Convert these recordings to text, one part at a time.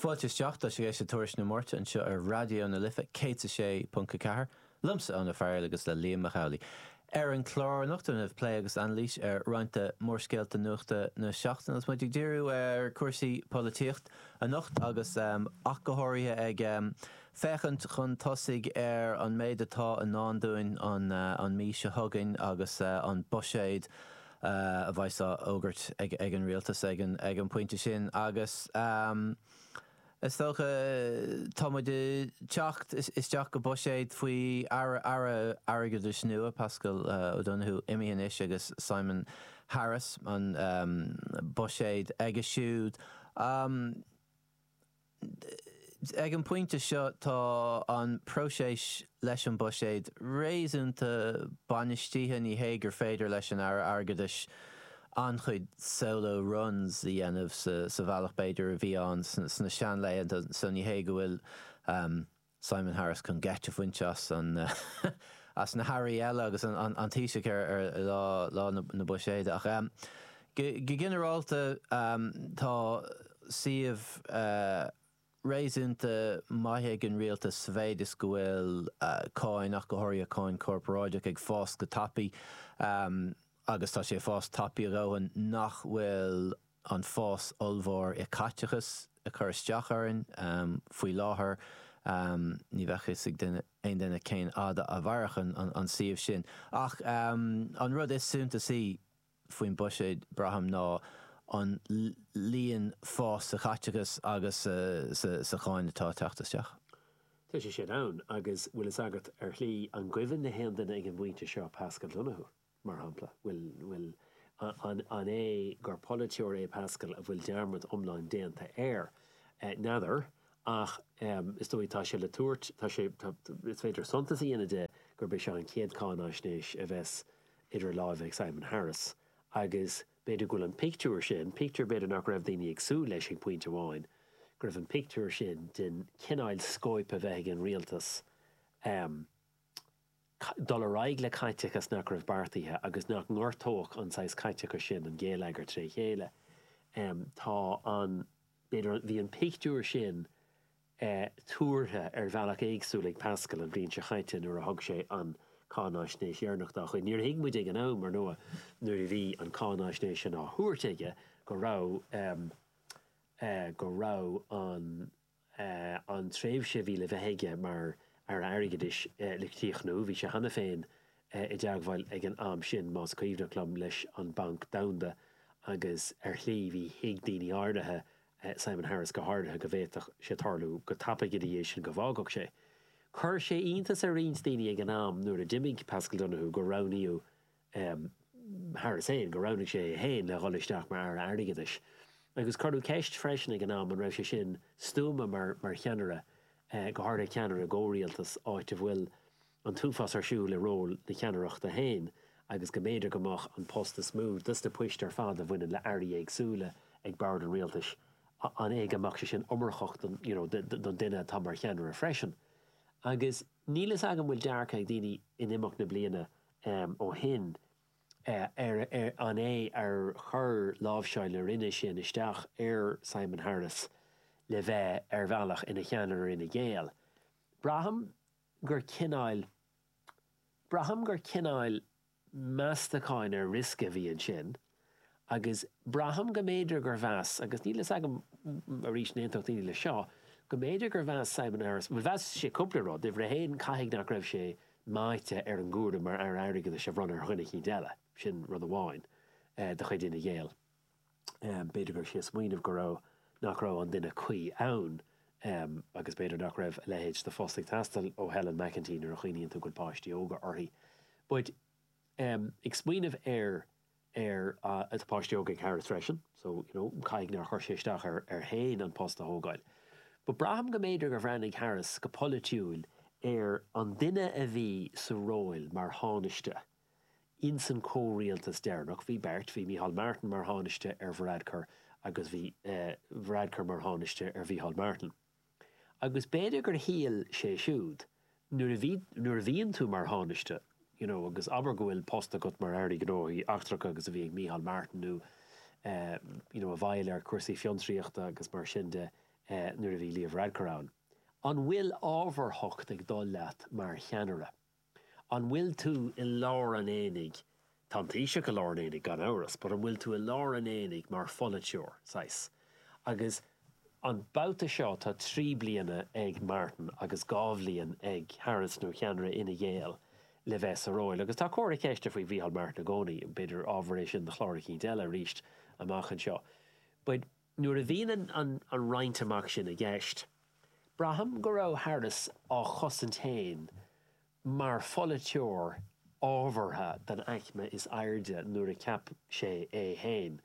Fáilte isteach, tá sibh ag éisteacht le Tuairisc na Máirte anseo ar Raidió na Life 106.4, liomsa, Eoin Ó Fearghaíl agus le Liam Mac Amhlaigh. Ar an chlár anocht déanfar plé agus anailís ar roinnt de mhórscéalta nuachta na seachtaine agus muid ag díriú ar cúrsaí polaitíocht anocht agus ach go háirithe ag féachaint chun tosaigh ar an méid atá i ndán dúinn an mhí seo chugainn agus an buiséad a bheidh á fhógairt ag an Rialtas ag an bpointe sin agus is dóigh tá muid ag teacht isteach go buiséad faoi Aire Airgeadais nua, Paschal Donohoe, imithe anois agus Simon Harris, an buiséad aige siúd. Ag an bpointe seo tá an próiseas leis an bhuiséad réasúnta bainistithe. Ní hé gur féidir leis an Aire Airgeadais an-chuid solo runs a dhéanamh sa bhealach b'fhéidir a bhí ann sna seanlaethanta so ní hé go bhfuil Simon Harris chun geit a bhaint as na hairí eile agus an Taoiseach ar lá na buiséide. Ach go ginearálta tá suíomh réasúnta maith ag an rialtas sa mhéid is go bhfuil cáin, ach go háirithe cáin chorparáideach, ag fás go tapaidh agus tá sé ag fás tapaidh a dhóthain nach bhfuil an fás ollmhór i gcaiteachas ag cur isteach orainn. Faoi láthair ní bheadh fhios ag aon duine cén fhad a mhairfeadh an suíomh sin. Ach an rud is suntasaí faoin buiséad, braithim, ná an líon fás sa chaiteachas agus sa cháin atá ag teacht isteach. Tá sé sin ann, agus bhfuil fhios agat, ar shlí, an gcuimhin le haon duine ag an bpointe seo Paschal Donohoe? mar shampla. Bhuel, an é gur polaiteoir é Paschal a bhfuil dearmad iomlán déanta air? N'fheadar, ach is dóigh tá sé le tabhairt, tá sé, is féidir suntas a dhéanamh de gurb é seo an chéad cháinaisnéis a bheas idir láimhe ag Simon Harris agus b'fhéidir go bhfuil an pictiúr sin, pictiúr b'fhéidir nach raibh daoine ag súil leis ag pointe amháin, go bhfuil an pictiúr sin den chineál scóip a bheith ag an rialtas, dul ar aghaidh le caiteachas nach raibh beartaithe agus nach ngortódh an saghas caiteachais sin an géilleagar tré chéile. Tá an, b'fhéidir, bhí an pictiúr sin tuartha ar bhealach éagsúil ag Pascal an bhliain seo chaite nuair a thug sé an cáinaisnéis dheireanach dá chuid. Níor thuig muid ag an am, ar ndóigh, nuair a bhí an cáinaisnéis sin á thabhairt aige, go raibh, go raibh an. an tréimhse a bhí le bheith aige mar Aire Airgeadais le críochnú. Bhí sé cheana féin i dteagmháil ag an am sin, más cuimhneach liom, leis an Bhanc Domhanda agus ar shlí, bhí, thuig daoine áirithe, Simon Harris go háirithe, go bhféadfadh sé tarlú go tapaidh ina dhiaidh sin go bhfágfadh sé. Chuir sé iontas ar roinnt daoine ag an am nuair a d'imigh Paschal Donohoe gur roghnaíodh Harris féin gur roghnaigh sé é féin le dhul isteach mar Aire Airgeadais, agus cuireadh ceist freisin ag an am an raibh sé sin stuama mar mar cheannaire, go háirithe ceannaire i gcomhrialtas, áit a bhfuil an t-uafás ar siúl i ról na ceannaireachta féin agus go mb'fhéidir go mbeadh an post is mó de sna poist ar fad a bhaineann le airí éagsúla ag bord an rialtais, an é go mbeadh sé sin iomarcach don you know don duine atá mar cheannaire freisin? Agus níl a fhios agam bhfuil dearcadh ag daoine in imeacht na bliana ó shin, an é ar chuir láimhseáil na Roinne sin isteach ar Simon Harris le bheith ar bhealach ina cheannaire ar Fhine Gael? Braithim gur cineáil, braithim gur cineáil meastacháin ar riosca a bhí ansin. agus braithim go mb'fhéidir gur mheas, agus níl a fhios agam, arís, an aontódh daoine leis seo, go mb'fhéidir gur mheas Simon Harris, bhuel, mheas sé cúpla rud, uimhir a haon, caithfidh nach raibh sé meáite ar an gcúram mar Aire Airgeadais a bhronnadh ar dhuine eicínt eile, sin rud amháin de chuid Fhine Gael, b'fhéidir go raibh sé ag smaoineamh go raibh, nach raibh an duine cuí ann agus b'fhéidir nach raibh a leithéid de phost ag teastáil ó Helen McEntee nuair a chuimhníonn tú go bhfuil páistí óga aici, but. em, ag smaoineamh ar, ar páistí óga ag Harris freisin, so, you know, caithfidh nár chuir sé isteach air, air féin an post a thógáil. But braithim go mb'fhéidir gur bhreathnaigh Harris go polaitiúil ar an duine a bhí sa ról mar Thánaiste in san comhrialtas deireanach, bhí beirt, bhí Micheál Martin mar Thánaiste ar Varadkar agus bhí eh, Varadkar mar Thánaiste ar Mhicheál Martin. Agus b'fhéidir gur shíl sé siúd, nuair a bhí, nuair a bhíonn tú mar Thánaiste, you know, agus abair go bhfuil post agat mar Aire Gnóthaí Eachtracha agus a bhí ag Micheál Martin nó eh, you know, i bhfeighil ar chúrsaí fiontraíochta agus mar sin de eh, nuair a bhí Leo Varadkar ann, an bhfuil ábharthacht ag dul leat mar cheannaire? An bhfuil tú i lár an aonaigh? Tá an Taoiseach i lár an aonaigh, gan amhras, but an bhfuil tú i lár an aonaigh mar pholaiteoir, saghas? Agus an babhta seo tá trí bliana ag Martin agus dhá bhliain ag Harris nó cheannaire Fhine Gael le bheith sa ról. Agus tá comhartha ceiste faoi Mhícheál Martin i gcónaí, b'fhéidir ábhar é sin do chlár eicínt eile arís amach anseo. But. Nuair a bhíonn an roinnt amach sin i gceist, braithim go raibh Harris á chosaint féin mar pholaiteoir ábhartha den aicme is airde nuair a cheap sé é féin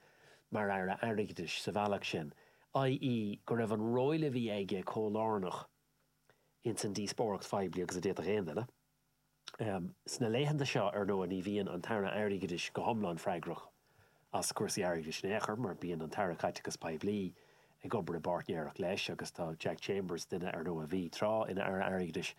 mar Aire Airgeadais sa bhealach sin, i.e. go raibh an ról a bhí aige chomh lárnach ins an díospóireacht phoiblí agus a d'fhéadfadh aon duine. Sna laethanta seo, ar ndóigh, ní bhíonn an tAire Airgeadais go hiomlán freagrach as cúrsaí airgeadais in aon chor, mar bíonn an tAire Caiteachais Poiblí ag obair i bpáirtnéireacht leis agus tá Jack Chambers, duine, ar ndóigh, a bhí tráth ina Aire Airgeadais,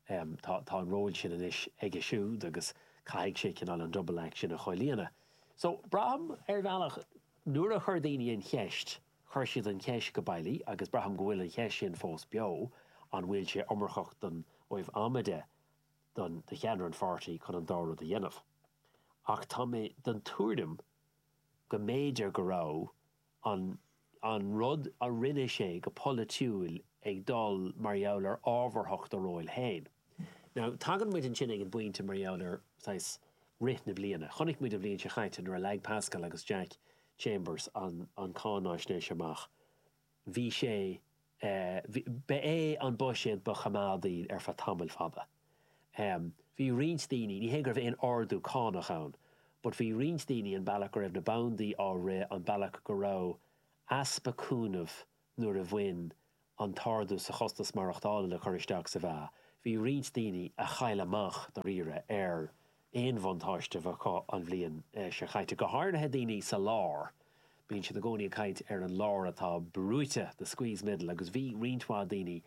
tá an ról sin anois aige siúd agus caithfidh sé cineál an 'double act' sin a chomhlíonadh. So, braithim, ar bhealach, nuair a chuir daoine an cheist, Chuir siad an cheist go bailí agus braithim go bhfuil an cheist sin fós beo, an bhfuil sé iomarcach don am a mbeadh do do cheannaire an pháirtí chun an dá rud a dhéanamh? Ach tá mé den tuairim go mb'fhéidir go raibh an an rud a rinne sé go polaitiúil ag dul mar gheall ar ábharthacht a róil féin. Now tagann muid ansin ag an bpointe mar gheall ar saghas rith na bliana. Chonaic muid an bhliain seo chaite nuair a leag Paschal agus Jack Chambers an cháináisnéis amach. Bhí sé Ba é an buiséad ba choimeádaí ar feadh tamaill fada. Bhí roinnt daoine Ní hé go raibh aon ardú cánach ann but bhí roinnt daoine an bealach go raibh na bandaí á rith an bealach go raibh easpa cúnaimh nuair a bhain an t-ardú sa chostas maireachtála le cur isteach sa mheá, bhí roinnt daoine a chaill amach dáiríre ar aon bhuntáiste a bheadh acu an bhliain seo chaite, go háirithe daoine sa lár. Bíonn siad i gcónaí ag caint ar an lár atá brúite, the squeezed middle, agus bhí roinnt mhaith daoine,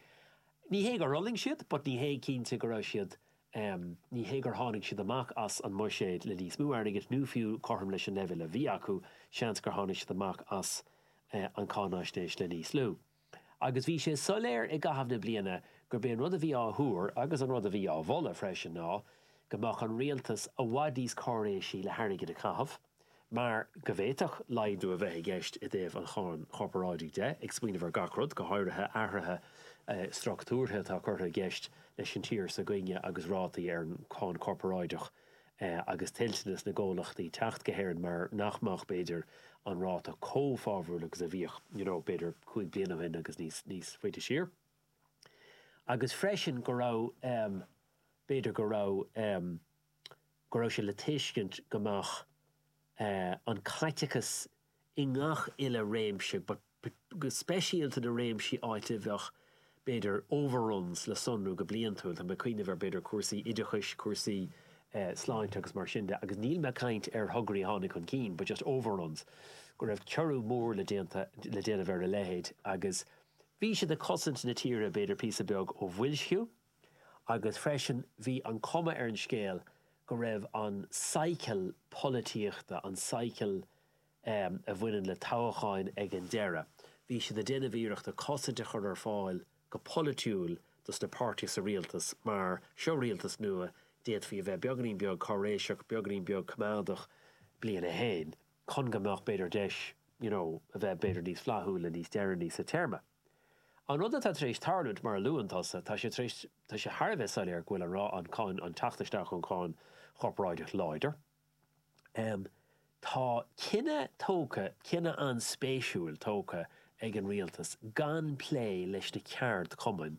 ní hé gur fhulaing siad but ní hé cinnte go raibh siad M, Ní hé gur tháinig siad amach as an mbuiséad le níos mó airgid nó fiú cothrom leis an leibhéal a bhí acu, seans gur tháinig siad amach as an cháinaisnéis le níos lú. Agus bhí sé soiléir i gcaitheamh na bliana gurb é an rud a bhí á thuar, agus an rud a bhí á mholadh freisin, ná go mbeadh an rialtas i bhfad níos cáiréisí le hairgead a chaitheamh. mar go bhféadfadh laghdú a bheith i gceist i dtaobh an cháin chorparáidigh de, ag smaoineamh ar gach rud, go háirithe athruithe structúrtha atá curtha i gceist leis an tír s'againne agus rátaí ar an cháin chorparáideach agus toilteanas na gcomhlachtaí teacht go hÉirinn mar nach mbeadh, b'fhéidir, an ráta chomh fabhrúil agus a bhíodh, you know, b'fhéidir cúig bliana ó shin agus níos faide siar. Agus freisin go raibh, b'fhéidir go raibh. go raibh sé le tuiscint go mbeadh an caiteachas i ngach uile réimse, go speisialta na réimsí áit a bheadh, b'fhéidir, overruns le sonrú go bliantúil, tá mé ag cuimhneamh ar, b'fhéidir, cúrsaí oideachais, cúrsaí sláinte agus mar sin de, agus níl mé ag caint ar thograí a tháinig chun cinn but just overruns, go raibh ciorrú mór le déana, le déanamh ar a leithéid agus bhí siad ag cosaint na tíre, b'fhéidir, píosa beag ó bhoilsciú. agus freisin bhí an cuma ar an scéal go raibh an cycle polaitíochta, an cycle a bhaineann le toghcháin ag an deireadh, bhí siad ag déanamh iarrachta cosaint a chur ar fáil go polaitiúil dos na páirtithe sa rialtas mar seo rialtas nua, d'fhéadfaí a bheith beagainín beag cáiréiseach, beagainín beag coimeádach, bliain a haon, chun go mbeadh b'fhéidir deis, you know, a bheith b'fhéidir níos flaithiúla níos deireanaí sa téarma. An rud atá tar éis tarlúint, mar a luann tusa, tá sé tar éis, tá sé thar a bheith soiléir go bhfuil an-, an cáin, an teacht isteach ón gcáin chorparáideach láidir. Tá cinneadh tógtha, cinneadh an-spéisiúil tógtha ag an Rialtas gan plé leis na ceardchumainn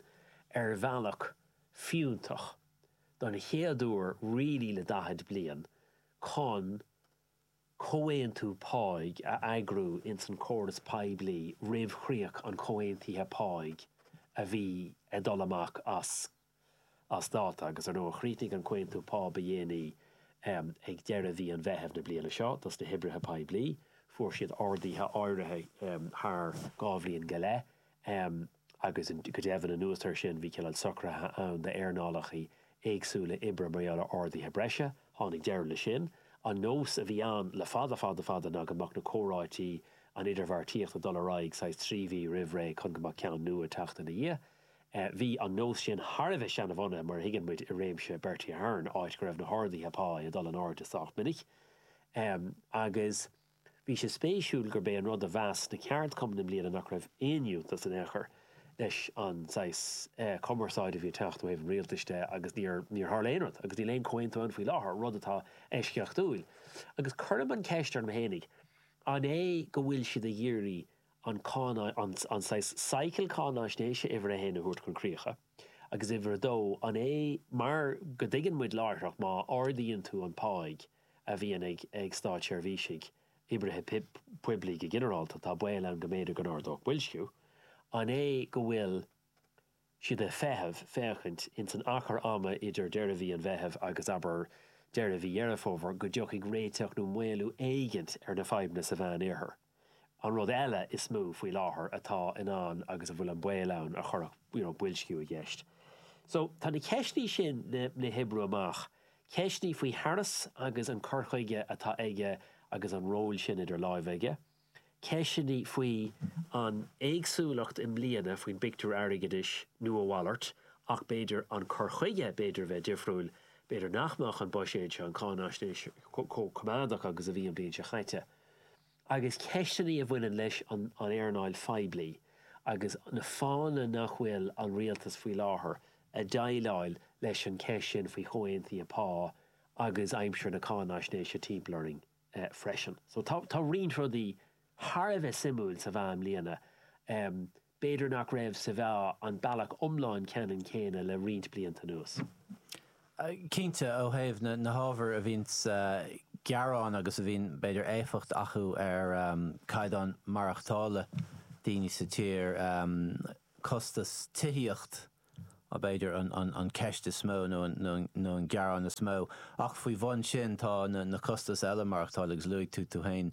ar bhealach fiúntach, don chéad uair really le daichead bliain, chun. comhaontú páigh a eagrú ins an córas poiblí roimh chríoch an chomhaontaithe páigh a bhí ag dul amach as as dáta agus, ar ndóigh, chríochnaigh an comhaontú pá ba dhéanaí ag deireadh mhí an Mheithimh na bliana seo dos na hoibrithe poiblí. Fuair siad arduithe áirithe thar dhá bhliain go leith. agus go deimhin, anuas air sin, bhí cineál socruithe ann d'earnálacha éagsúla oibre mar gheall ar arduithe breise. Tháinig deireadh leis sin. An nós a bhí ann le fada fada fada ná go mbeadh na comhráití, an idirbheartaíocht ag dul ar aghaidh saghas trí mhí roimh ré chun go mbeadh ceann nua ag teacht ina dhiaidh. Bhí an nós sin thar a bheith seanabhunaithe, mar a thuigeann muid, i réimse Bertie Ahern, áit go raibh na harduithe pá ag dul in airde sách minic agus, Bhí sé spéisiúil gurb é an rud a mheas na ceardchumainn i mbliana nach raibh aon fhiúntas in aon chor leis an saghas cumarsáide a bhí ag teacht ó thaobh an rialtais de agus níor tharla aon rud agus níl aon chomhaontú ann faoi láthair, rud atá eisceachtúil. Agus cuirim an cheist orm fhéinig, an é go bhfuil siad ag iarraidh an ceann, an saghas cycle cáinaisnéise uimhir a haon a thabhairt chun críocha agus uimhir a dó, an é mar go dtuigeann muid láithreach má ardaíonn tú an páigh, a bhíonn ag ag státseirbhísigh, oibrithe poiblí go ginearálta, tá baol ann go mb'fhéidir go n-ardódh boilsciú. An é go bhfuil siad ag feitheamh, féachaint, ins an achar ama idir deireadh mhí an Mheithimh agus, abair, deireadh mhí Dheireadh Fómhair, go dtiocfaidh réiteach nó maolú éigint ar na fadhbanna sa Mheán-Oirthear? An rud eile is mó faoi láthair atá in ann agus a bhfuil an baol ann go gcuirfeadh you know boilsciú i gceist so tá na ceisteanna sin le hoibriú amach, ceisteanna faoi Harris agus an cur chuige atá aige agus an ról sin idir láimhe aige, ceisteanna faoi an éagsúlacht i mbliana faoin bpictiúr airgeadais nó a mhalairt ach b'fhéidir an cur chuige b'fhéidir a bheith difriúil, b'fhéidir nach mbeadh an buiséad seo, an cáináisnéis, chomh coimeádach agus a bhí an bhliain seo caite. agus ceisteanna a bhaineann leis an earnáil phoiblí agus na fáthanna nach bhfuil an Rialtas faoi láthair ag déileáil leis an gceist sin faoi chomhaontuithe pá agus aimsir na cáinaisnéise timpeall orainn freisin, so tá roinnt rudaí thar a bheith suimiúil sa mheá i mbliana. B'fhéidir nach raibh sa mheá an bealach iomlán ceannann céanna le roinnt blianta anuas. Cinnte, ó thaobh na hábhair a bhíonn ag gearán agus a bhíonn, b'fhéidir, éifeacht acu ar chaighdeán maireachtála daoine sa tír, costas tithíocht, b'fhéidir, an cheist is mó nó an gearán is mó. Ach faoi bhun sin tá na costais eile maireachtála agus luaigh tú tú féin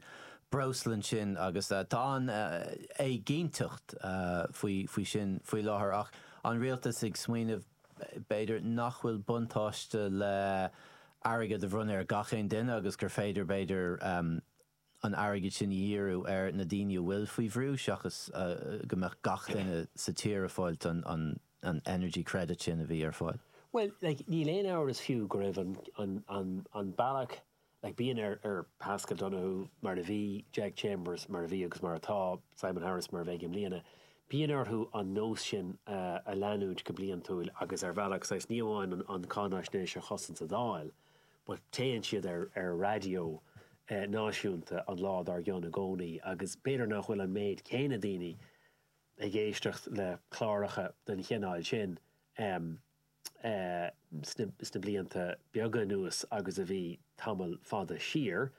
breosla ansin agus tá an-éiginnteacht faoi sin faoi láthair ach an Rialtas ag smaoineamh b'fhéidir nach bhfuil buntáiste le airgead a bhronnadh ar gach aon duine agus gur féidir b'fhéidir an t-airgead sin a dhíriú ar na daoine a bhfuil faoi bhrú seachas go mbeadh gach duine sa tír ag fáilt an energy credit sin a bhí ar fáil. Bhuel, like, níl aon amhras fiú go raibh an, an, an, an bealach, like, bíonn ar, ar Paschal Donohoe, mar a bhí, Jack Chambers, mar a bhí agus mar atá, Simon Harris, mar a bheidh i mbliana, bíonn orthu an nós sin a leanúint go bliantúil agus ar bhealach, saghas, ní amháin an, an cáináisnéis a chosaint sa Dáil, But téann siad ar raidió náisiúnta an lá dár gcionn i gcónaí, agus b'fhéidir nach bhfuil an méid céanna daoine ag éisteacht le cláracha den chineál sin sna blianta beaga anuas agus a bhí tamall fada siar,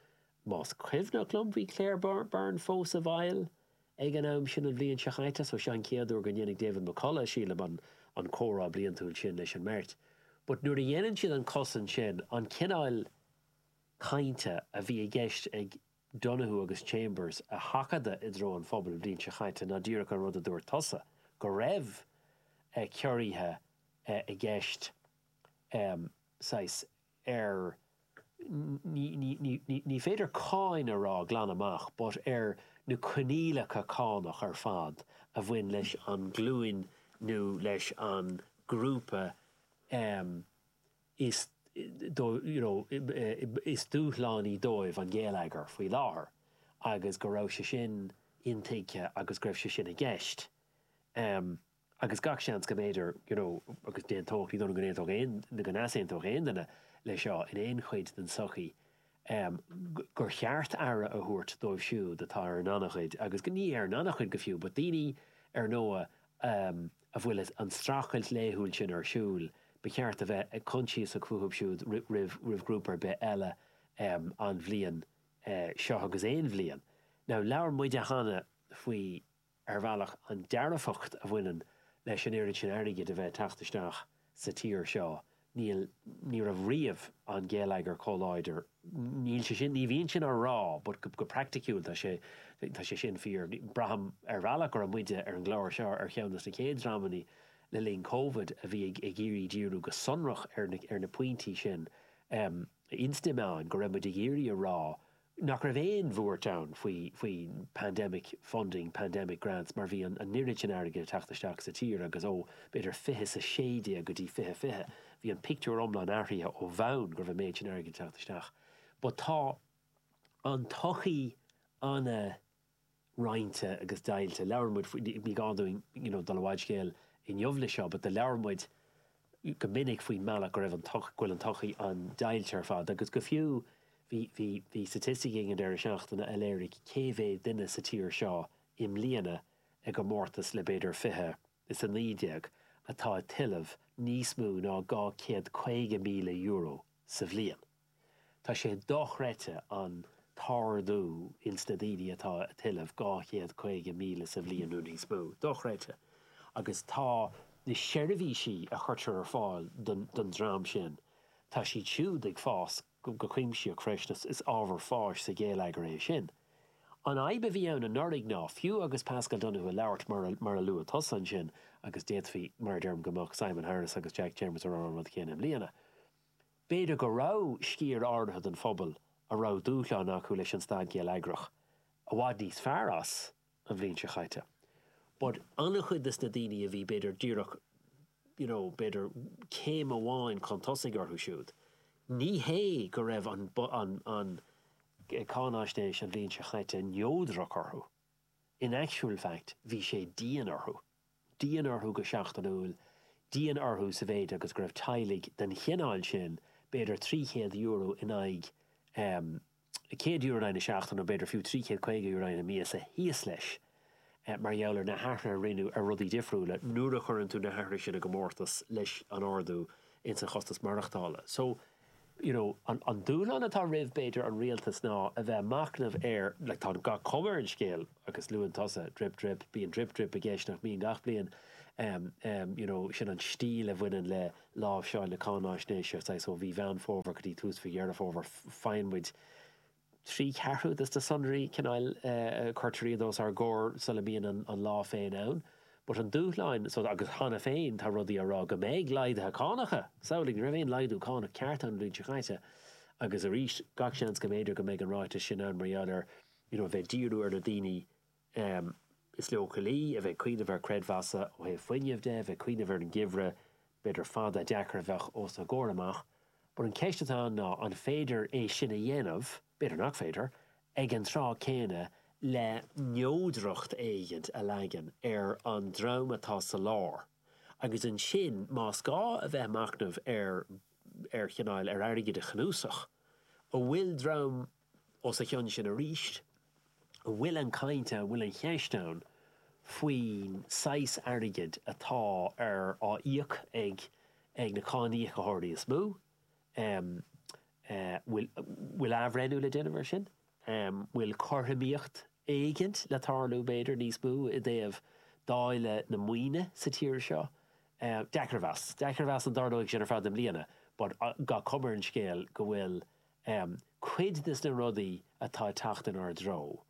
más cuimhneach liom bhí Claire Byrne fós i bhfeighil Ag an am sin an bhliain seo chaite, so seo an chéad uair go ndéanfaidh David McCullagh, sílim, an an comhrá bliantúil sin leis an mbeirt. But nuair a dhéanann siad an cosaint sin, an cineál cainte a bhí i gceist ag Donohoe agus Chambers a sheachadadh i dtreo an phobail an bhliain seo chaite ná díreach an rud a dúirt tusa, go raibh ciorruithe i gceist, saghas, ar ní féidir cáin a rá glan amach but ar na coinníollacha cánach ar fad a bhain leis an nglúin nó leis an ngrúpa is you know is dúshlánaí dóibh an geilleagar faoi láthair agus go raibh sé sin intuigthe agus go raibh sé sin i gceist. agus gach seans go mb'fhéidir you know agus d'aontódh, ní dóigh liom go n-aontódh aon, go n-easaontódh aon duine leis seo in aon chuid den tsochaí, em, gur cheart aire a thabhairt dóibh siúd atá ar an ngannchuid agus go, ní ar an ngannchuid go fiú but daoine ar ndóigh, em, a bhfuil an streachailt laethúil sin ar siúl, ba cheart a bheith coinsiasach fúthu siúd roimh, roimh ghrúpa ar bith eile, em, an bhliain, eh, seo agus aon bhliain. Now labhair muide cheana faoi, ar bhealach, an dearfacht a bhaineann leis an oiread sin airgid a bheith ag teacht isteach sa tír seo, ní, ní raibh riamh an geilleagar chomh láidir, níl, níl mé díreach á rá but go praiticiúil tá sé, tá sé sin fíor. Braithim ar bhealach go raibh muide ar an gclár seo ar cheann de na chéad dreamanna le linn Covid a bhí ag iarraidh díriú go sonrach ar na, ar na pointí sin. Ins an am go raibh muid ag iarraidh a rá nach raibh aon bhuairt ann faoi pandemic funding, pandemic grants mar bhí an oiread sin airgid ag teacht isteach sa tír agus ó, b'fhéidir, fiche is a sé déag go dtí fiche fiche, bhí an pictiúr iomlán athraithe ó bhonn go raibh an méid sin airgid ag teacht isteach. But tá an tsochaí an-. roinnte agus deighilte. Labhair muid faoi, ní gá dúinn you know dul i bhfad scéil inniu leis seo, but do labhair muid go minic faoin mbealach go raibh an go bhfuil an tsochaí an-deighilte ar fad agus go fiú bhí, bhí, bhí staitisticí ag an deireadh seachtaine a léirigh cé mhéad duine sa tír seo i mbliana i gcomórtas le b'fhéidir fiche is a naoi déag atá ag tuilleamh níos mó ná dhá céad caoga míle euro sa bhliain. Tá sé dochreidte an t-ardú ins na daoine atá ag tuilleamh dhá chéad caoga míle sa bhliain nó níos mó. Dochreidte. Agus tá na seirbhísí a chuirtear ar fáil don dream sin, tá siad siúd ag fás go cuimsitheach freisin. Is ábhar fáis sa gheilleagar é sin. An fhadhb a bhí ann anuraidh ná, fiú agus Paschal Donohoe ag labhairt mar a luaigh tusa ansin, agus d'fhéadfaí, mar a deirim, go mbeadh Simon Harris agus Jack Chambers ag rá an rud céanna i mbliana, B'fhéidir go raibh sciar áirithe den phobal a raibh dúshlán acu leis an staid gheilleagrach i bhfad níos fearr as an bhliain seo chaite, but an-chuid de na daoine a bhí b'fhéidir díreach, you know, b'fhéidir céim amháin chun tosaigh orthu siúd, ní hé go raibh an cháinaisnéis an bhliain seo chaite neodrach orthu, in actual fact bhí sé dian orthu. dian orthu go seachtainiúil, dian orthu sa mhéid agus go raibh teaghlaigh den chineál sin, b'fhéidir €300 in aghaidh em €100 in aghaidh na seachtaine nó b'fhéidir fiú €350 in aghaidh na míosa, thíos leis eh mar gheall ar na hathruithe a rinneadh ar rudaí difriúla nuair a chuireann tú na hathruithe sin i gcomórtas leis an ardú ins an chostas maireachtála. So. you know an dúshlán atá roimh b'fhéidir an rialtas ná a bheith ag machnamh ar like tá gach cuma ar an scéal agus luann tusa drip drip bíonn drip drip i gceist nach mbíonn gach bliain um um you know sin an stíl a bhaineann le láimhseáil na cáináisnéise saghas ó mhí Mheán Fómhair go dtí tús mhí Dheireadh Fómhair faigheann muid trí cheathrú des na sonraí cineál curtar iad os ár gcomhair sula mbíonn an lá féin ann. But an dúshlán so, agus cheana féin tá rudaí á rá go mbeidh laghduithe cánacha! Samhlaigh, ní raibh aon laghdú cánach ceart ann an bhliain seo chaite agus arís gach seans go mb'fhéidir go mbeidh an ráiteas sin ann mar gheall ar, you know, a bheith ag díriú ar na daoine Em. is leochailí, a bheith ag cuimhneamh ar chreidmheasanna ó thaobh fuinnimh de, a bheith ag cuimhneamh ar an gheimhreadh, b'fhéidir fada, deacair a bheadh os a gcomhair amach. But an cheist atá ann ná an féidir é sin a dhéanamh, b'fhéidir nach féidir, ag an tráth céanna le neodracht éigint a leagan ar an dream atá sa lár agus ansin más gá a bheith ag machnamh ar ar chineál ar airgid a chnuasach a bhfuil dream Os a chionn sin arís, an bhfuil an chaint ann, bhfuil an cheist ann faoin saghas airgid atá á íoc ag ag na cáiníocóirí is mó? Bhfuil bhfuil athbhreithniú le déanamh ar sin? Bhfuil cothromaíocht éigint le tarlú, b'fhéidir, níos mó i dtaobh dáileadh na maoine sa tír seo? Deacair a mheas. Deacair a mheas an dtarlóidh sin ar fad i mbliana but gach cuma ar an scéal go bhfuil Um cuid des na rudaí atá ag teacht inár dtreo,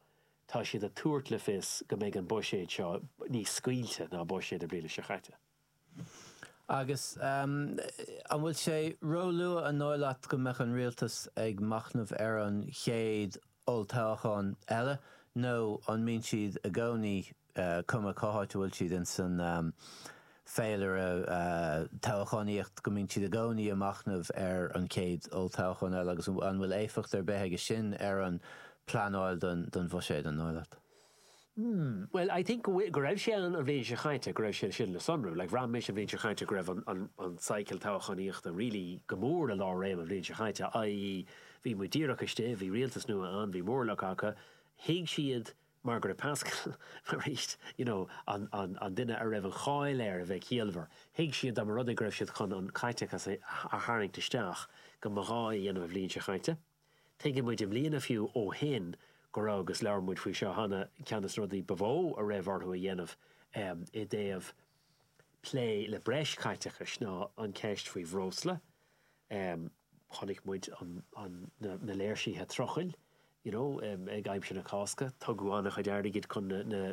tá siad ag tabhairt le fios go mbeidh an buiséad seo níos scaoilte ná buiséad na bliana seo caite. Agus an bhfuil sé róluath an dóigh leat go mbeadh an rialtas ag machnamh ar an chéad olltoghchán eile nó an mbíonn siad i gcónaí cuma cá háit a bhfuil siad ins an féilire toghchánaíochta, go mbíonn siad i gcónaí ag machnamh ar an chéad olltoghchán eile agus an bhfuil éifeacht ar bith aige sin ar an bpleanáil don bhuiséad, an dóigh leat? Bhuel, I think go raibh sé an bhliain seo chaite, go raibh sé sin le sonrú. Like, bhraith mise an bhliain seo chaite go raibh an cycle toghchánaíochta really go mór i lár réime an bhliain seo chaite, i.e. bhí muid díreach istigh, bhí rialtas nua ann, bhí móramh acu, thuig siad Mar gheall ar Paschal, arís, you know an an duine a raibh an cháil air a bheith ciallmhar, thuig siad dá mba rud é go raibh siad chun an caiteachas a tharraingt isteach go mba ghá é a dhéanamh an bhliain seo caite. Tuigeann muid i mbliana fiú ó shin go raibh agus labhair muid faoi seo cheana ceann de na rudaí ba mhó a raibh orthu a dhéanamh i dtaobh plé le breis caiteachais ná an ceist faoi bhreosla, chonaic muid na léirsithe trucail you know ag aimsir na Cásca, tugadh an-chuid airgid chun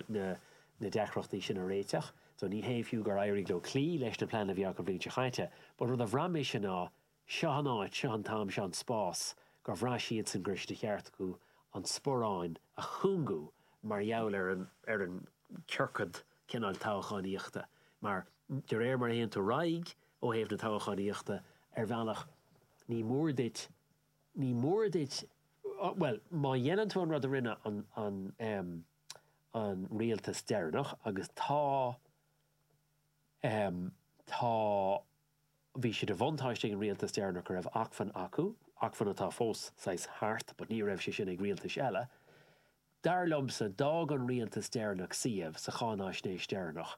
na deacrachtaí sin a réiteach so ní hé fiú gur éirigh leo cloí leis na pleananna a bhí acu an bhliain seo caite but rud a bhraith mise ná seo an áit, seo an t-am, seo an spás gur bhraith siadsan go raibh sé de cheart acu an sparán a chúngú mar gheall ar an ar an ciorcad cineál toghchánaíochta mar de réir mar a théann tú ar aghaidh Ó thaobh na toghchánaíochta ar bhealach, ní mór duit, ní mór duit, bhuel, má dhéanann tú an rud a rinne an, an, an rialtas deireanach, agus tá, tá, bhí sé de bhuntáiste ag an rialtas deireanach go raibh acmhainn acu, acmhainn atá fós saghas thart, but ní raibh sé sin ag rialtais eile, dar liomsa, d'fhág an rialtas deireanach suíomh sa cháinaisnéis deireanach.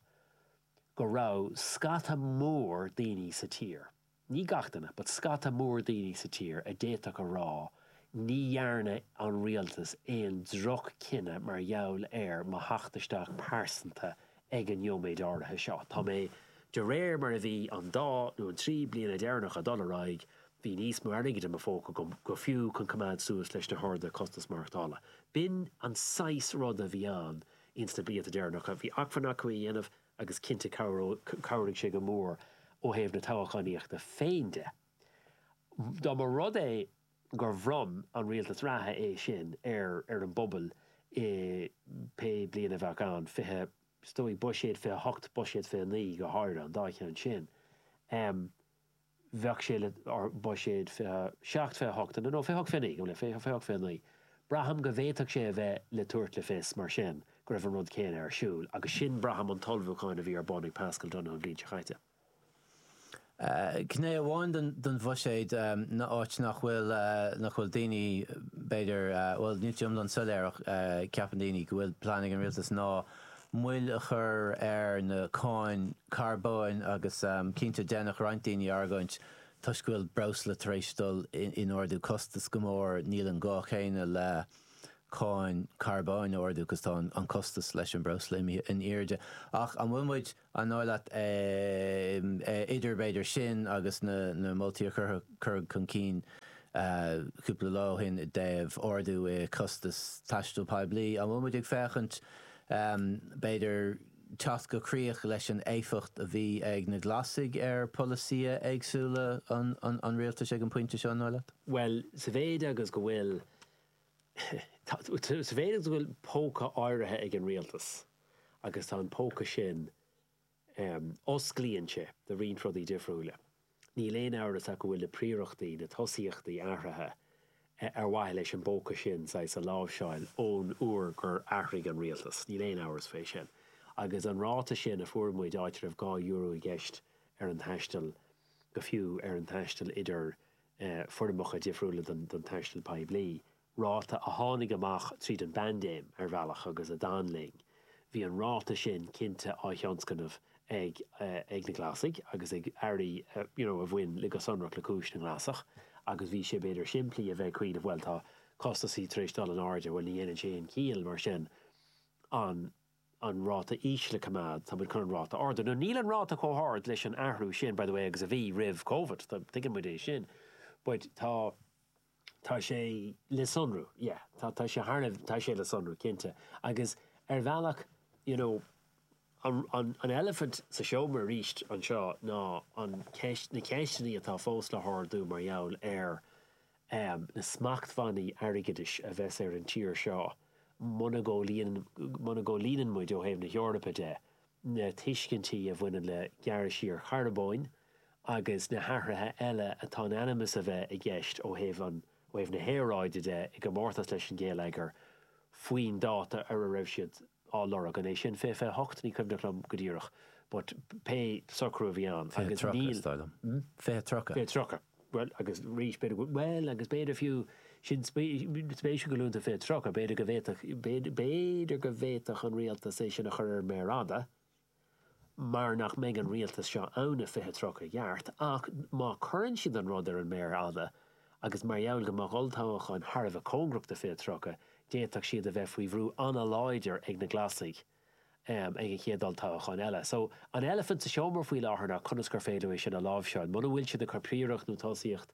go raibh scata mór daoine sa tír, ní gach duine, but scata mór daoine sa tír a d'fhéadfadh a rá ní dhearna an Rialtas aon drochchinneadh mar gheall ar mo theacht isteach pearsanta ag an nóiméad áirithe seo. Tá mé, de réir mar a bhí an dá nó an trí bliana deireanacha ag dul ar aghaidh, bhí níos mó airgid i mo phóca agam go fiú chun coimeád suas leis na harda costas maireachtála. B'in an saghas rud a bhí ann Ins na blianta deireanacha bhí acmhainn acu é a dhéanamh agus cinnte chabhraigh sé go mór ó thaobh na toghchánaíochta féin de. Dá mba rud é gur bhronn an rialtas reatha é sin ar ar an bpobal i pé bliain a bheadh ann, fiche, is dóigh, buiséad 28, buiséad 29 go háirithe, an dá cheann sin, bheadh sé le buiséad 27, 28, nó 28, 29, go minic, 28, 29. Braithim go bhféadfadh sé a bheith le tabhairt le fios, mar sin, go raibh an rud céanna ar siúl, agus sin, braithim, an t-ullmhúchán a bhí ar bun ag Paschal Donohoe an bhliain seo caite. Gné amháin den bhuiséad ná áit nach bhfuil, nach bhfuil daoine, b'fhéidir, bhuel, níl sé iomlán soiléir ach ceapann daoine go bhfuil plean ag an rialtas ná, moill a chur ar na cáin carbóin agus cinnte déanfadh roinnt daoine argóint toisc go bhfuil breosla tar éis dul in ardú costas go mór níl an gá céanna le cáin carbóin a ardú cos tá an costas leis an breosla imithe in airde ach an bhfuil muid An dóigh leat, idir b'fhéidir sin agus na moltaí a cuireadh chun cinn cúpla lá ó shin i dtaobh ardú i costas taistil poiblí, an bhfuil muid ag féachaint, b'fhéidir, teacht chun críoch leis an éifeacht a bhí ag na Glasaigh ar pholasaithe éagsúla an rialtais ag an bpointe seo, an dóigh leat? Bhuel, sa mhéid agus go bhfuil Sa mhéid is go bhfuil póca áirithe ag an Rialtas agus tá an póca sin, osclaíonn sé do roinnt rudaí difriúla. Níl aon amhras ach go bhfuil na príorachtaí, na tosaíochtaí athraithe ar mhaithe leis an bpóca sin, saghas, a láimhseáil ón uair gur athraigh an Rialtas. Níl aon amhras fé sin. Agus an ráta sin a fuair muid, áit a raibh dhá euro i gceist ar an taisteal, go fiú ar an taisteal idir foirmeacha difriúla den taisteal poiblí, ráta a tháinig amach tríd an bpaindéim ar bhealach agus a d'fhan linn. Bhí an ráta sin cinnte á thionscnamh ag na Glasaigh agus ag airí, you know, a bhain le, go sonrach le cúis na nGlasach agus bhí sé, b'fhéidir, simplí a bheith ag cuimhneamh, bhuel, tá costasaí tar éis dul in airde, bhuel, ní dhéanann sé aon chiall mar sin an an ráta íseal a choimeád, tá muid chun an ráta a ardú. Now níl an ráta chomh hard leis an athrú sin, by the way, agus a bhí roimh Covid, tuigeann muid é sin, but tá, tá sé le sonrú, yeah, tá, tá sé thar a, tá sé le sonrú, cinnte. Agus ar bhealach, you know, an, an, an eilifint sa seomra arís anseo ná an cheist, na ceisteannaí atá fós le hardú mar gheall ar, amh, na smachtbhannaí airgeadais a bheas ar an tír seo muna gcomhlíonann, muna gcomhlíonann muid, ó thaobh na hEorpa de, na tuiscintí a bhaineann le gearradh siar charbóin agus na hathruithe eile atá in ainm is a bheith i gceist ó thaobh an, ó thaobh na haeráide de, i gcomórtas leis an ngeilleagar faoin dáta ar a raibh siad á lorg. An é sin fiche 28? Ní cuimhneach liom go díreach but pé socrú a bhí ann Fiche tríocha, is dóigh liom. Hm? Fiche tríocha. Fiche tríocha. Bhuel, agus arís, b'fhéidir go bhfuil, bhuel, agus b'fhéidir fiú, sin spéisiúil go luann tú fiche tríocha, b'fhéidir go bhféadfadh, b'fhéidir go bhféadfadh an Rialtas é sin a chur ar an méar fhada, mar nach mbeidh an Rialtas seo ann i 2030 i gceart ach má chuireann siad an rud ar an méar fhada agus mar gheall go mbeadh olltoghacháin thar a bheith cóngarach do 2030 d'fhéadfadh siad a bheith faoi bhrú ana-láidir ag na Glasaigh ag an chéad olltoghachán eile. So an elephant sa seomra faoi láthair ná conas gur féidir é sin a láimhseáil muna bhfuil siad ag cur príoracht nó tosaíocht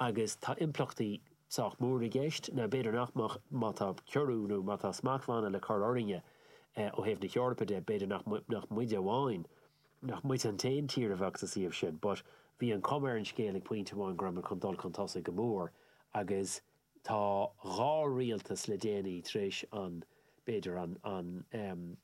agus tá impleachtaí sách mór i gceist, nó b'fhéidir nach mbeadh, má tá ciorrú nó má tá smachtbhanna le cur orainne ó thaobh na hEorpa de, b'fhéidir nach muide amháin, nach muid an t-aon tír a bheadh sa suíomh sin. But bhí an chuma ar an scéal ag pointe amháin go raibh muid chun dul chun tosaigh go mór agus Tá dhá rialtas le déanaí tar éis an, b'fhéidir, an, an em.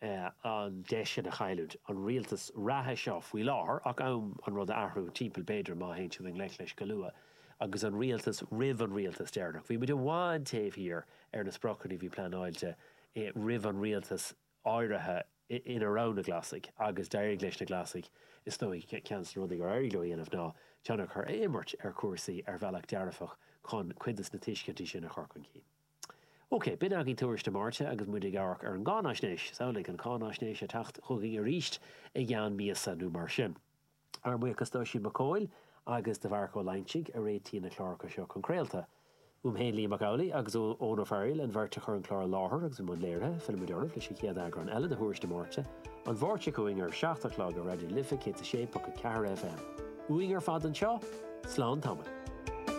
eh. an deis seo a chailliúint, an rialtas reatha seo faoi láthair, ach am an rud a athrú timpeall b'fhéidir má théann siad i ngleic leis go luath, agus an rialtas roimh an rialtas deireanach. Bhí muid i bhfad taobh thiar ar na spriocanna a bhí pleanáilte roimh an rialtas áirithe ina raibh na Glasaigh agus d'éirigh leis na Glasaigh is dóigh ceann de na rudaí gur éirigh leo a dhéanamh ná tionchar a imirt ar chúrsaí ar bhealach dearfach chun cuid de na tuiscintí sin a chur chun cinn. Ok, b'in agaibh Tuairisc na Máirte agus muid ag amharc ar an gcáinaisnéis. Samhlaigh an cháinaisnéis ag teacht chugainn arís i gceann míosa nó mar sin. Ár mbuíochas d'Oisín Mac Cóil agus do Mharc Ó Loingsigh a réitigh na cláracha seo chun craolta. Uaim féin, Liam Mac Amhlaigh agus Eoin Ó Fearghaíl, an bheirt a chur an clár i láthair agus i mbun léirithe, fillfimid oraibh leis an chéad eagrán eile de Thuairisc na Máirte, an Mháirt seo chugainn ar a seacht a chlog ar Raidió na Life 106.4 FM. Uainn ar fad anseo, slán tamaill.